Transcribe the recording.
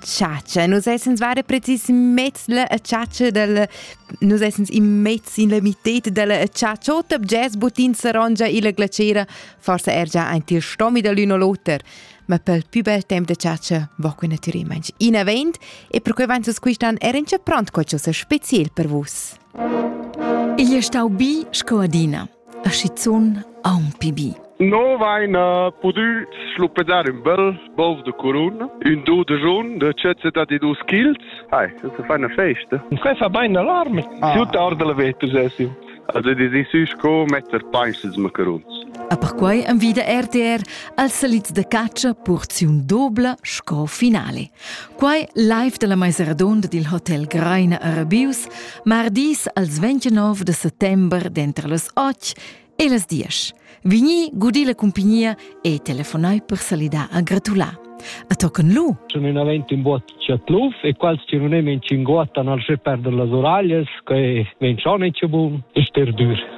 chatscha. Nus essens vare precis mezz la chatscha del nus essens in mezz in la mitete della chatscha. Ot jazz butin sarongia illa glacera, forse er già ein til stomi da l'un o l'oter. Ma pel più bel temp de chatscha va que natüralment in avent e per quei vain susquistan er in pront co cho se speziel per vus. Igl è stau bi sco adina. a schizun aunc pli bi. No vaina pudü schluppedar ün bel bov de curun, ün do de jaun de cezze da di dus chils. Hai, das ist eine Feste. Frei fa bain alarme. Ah. Si tard la vetus esim. Also die si sü sco metter peisels macaruns. A perquai envida RTR als salits de caccia porziun dobla sco finale. Quai live da la meisa radunda dil hotel Greina a Rabius, mardis als 29 de settember dentro las 8 e las 10. Vigni, gudi la compagnia e telefonai per salidar a gratular. A toccano lu. Sono in avvento in boat Chatluf e quals che non è men cinguattan al sche perder las oragles che men schon è buon e ster dur.